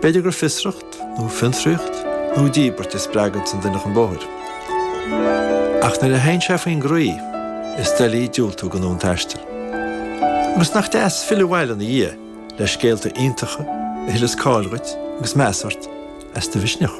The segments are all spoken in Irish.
B'fhéidir gur fiosracht, nó fiontraíocht, nó díbirt a spreaganns an duine chun bóthair. Ach nuair a théann sé faoin gcroí, is doiligh diúltú don fhonn taistil. Agus nach deas filleadh abhaile ina dhiaidh le scéalta iontacha a thuilleas cáil dhuit agus meas ort as do mhisneach.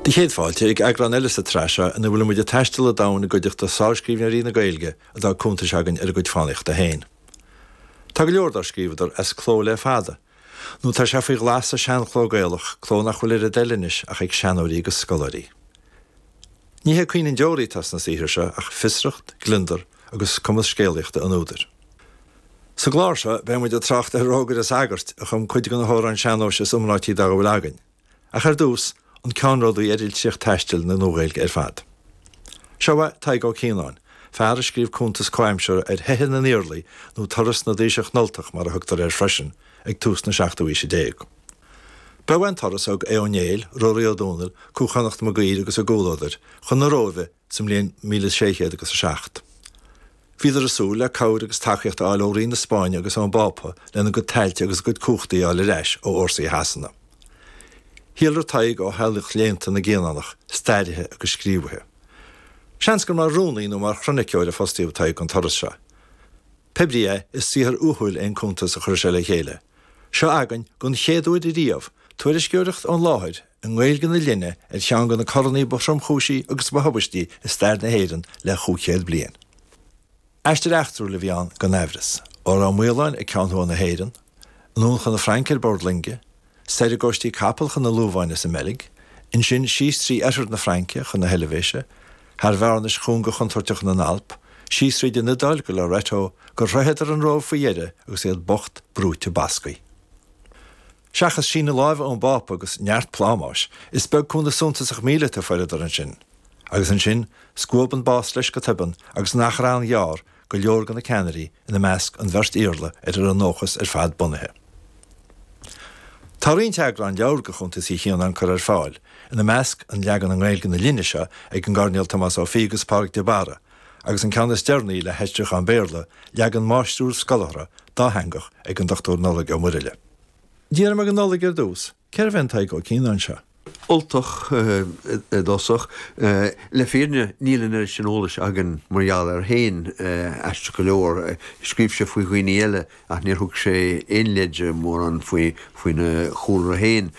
Do chéad fáilte ag eagrán eile sa tsraith seo ina bhfuil muid ag taisteal an domhain i gcuideachta sárscríbhneoirí na Gaeilge a d'fhág cuntais againn ar a gcuid fánaíochta féin. Tá go leor dár scríobhadar as cló le fada, nó tá sé faoi ghlas sa seanchló Gaelach, cló nach bhfuil ar a dtoil anois ach ag seanóirí agus scoláirí. Ní hé caoineadh an deoraí atá sna saothair seo ach fiosracht, gliondar agus cumas scéalaíochta an údair. Sa gclár seo beidh muid ag trácht ar Rógaire Sagairt, a chum cuid de na hamhráin sean-nóis is iomráití dá bhfuil againn. ach ar dtús, an ceannródaí ar litríocht taistil na Nua-Ghaeilge ar fad. Seo uaidh Tadhg Ó Cianáin, fear a scríobh cuntas comhaimseartha ar Theitheadh na nIarlaí nó Turas na dTaoiseach nUltach mar a thugtar air freisin, ag tús na seachtú aoise déag. B'eo an turas a thug Aodh Ó Néill, Ruairí Ó Domhnaill, Cú Chonnacht Mag Uidhir agus a gcomhluadair, chun na Róimhe, sa mbliain míle sé chéad agus a seacht. Bhíodar ag súil le cabhair agus tacaíocht a fháil ó Rí na Spáinne agus ón bPápa lena gcuid tailte agus a gcuid cumhachtaí a fháil ar ais ó fhórsaí Shasana. Shíolraigh Tadhg ó theaghlach léannta na gCianánach, stairithe agus scríobhaithe. Seans gur mar rúnaí nó mar chroniceoir a fostaíodh Tadhg don turas seo. Pé ar bith é, is saothar uathúil é an cuntas a chuir sé le chéile seo againn, den chéad uair riamh, tuairisceoireacht ón láthair, i nGaeilge na linne, ar cheann de na coranna ba thromchúisí agus ba thubaistí i stair na hÉireann le chúig chéad bliain. Aistear eachtrúil a bhí ann gan aimhreas, ó Ráth Maoláin ag ceann thuaidh na hÉireann, anonn chun na Fraince ar bord loinge, soir i gcóistí capall chun na Lobháine sa mBeilg, ansin síos trí oirthear na Fraince chun na hEilbhéise, thar bhearnais chúnga chontúirteacha na nAlp, síos tríd an Iodáil go Loreto, gur shroicheadar an Róimh faoi dheireadh agus iad bocht, brúite, basctha. Seachas síneadh láimhe ón bPápa agus neart plámáis, is beag cúnamh suntasach míleata a fuaireadar ansin. Agus ansin, scuab an bás leis go toibeann agus in achar an-ghearr, go leor de na ceannairí, ina measc an bheirt Iarla ar a raibh a ndóchas ar fad bunaithe. Tá roinnt eagrán leabhair de chuntas Uí Chianáin curtha ar fáil, ina measc an leagan i nGaeilge na linne seo ag an gCairdinéal Tomás Ó Fiaich agus Pádraig de Barra, agus an ceann is deireanaí le haistriúchán Béarla, leagan máistriúil scolártha dátheangach ag an Dr Nollaig Ó Muraíle. D'fhiafraigh mé de Nollaig ar dtús. Cérbh é an Tadhg Ó Cianáin seo? Ultach i dtosach. Le fírinne níl an oiread sin eolais againn mar gheall air féin, aisteach go leor. Scríobh sé faoi dhaoine eile ach níor thug sé aon leide mórán faoi faoina chúlra féin.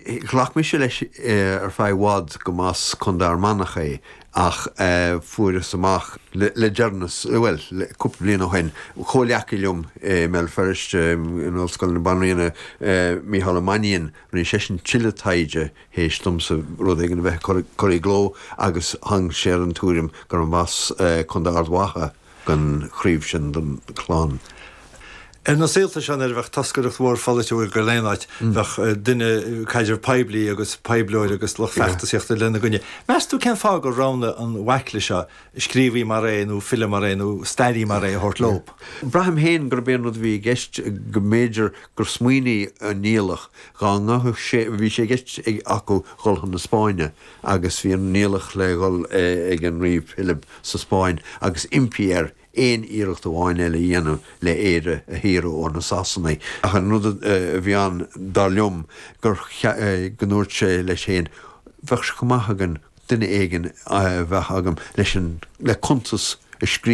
Ghlac mise leis ar feadh i bhfad go mb'as Contae Fhear Manach é ach fuaireas amach le deireanas, bhuel, cúpla bliain ó shin, comhleacaí liom i mBéal Feirste in Ollscoil na Banríona, Micheál Ó Mainnín, rinne seisean tuilleadh taighde théis domsa rud éigin a bheith curtha i gcló agus tháinig sé ar an tuairim go mb'as Contae Ard Mhacha, den chraobh sin den chlann. Ar na saolta seo nuair a bheadh toscaireacht mhór pholaitiúil ag dul aon áit, bheadh duine caidrimh poiblí agus poibleoir agus lucht feachtasaíochta lena gcois. Meas tú cén fáth gur roghnaigh an bhaicle seo scríobhaí mar é nó file mar é nó stairí mar é a thabhairt leo? Braithim féin gurb é an rud a bhí i gceist go mb'fhéidir gur smaoinigh an Niallach dá ngabhfadh sé, bhí sé i gceist acu dhul chun na Spáinne, agus bhí an Niallach le dhul ag an Rí Pilib sa Spáinn agus impí air aon iarracht amháin eile a dhéanamh le Éire a shaoradh ó na Sasanaigh. Ach an rud a bhí ann, dar liom, gur, go ndúirt sé leis féin, Bheadh sé go maith againn duine éigin a bheith agam leis an, le cuntas a scríobh,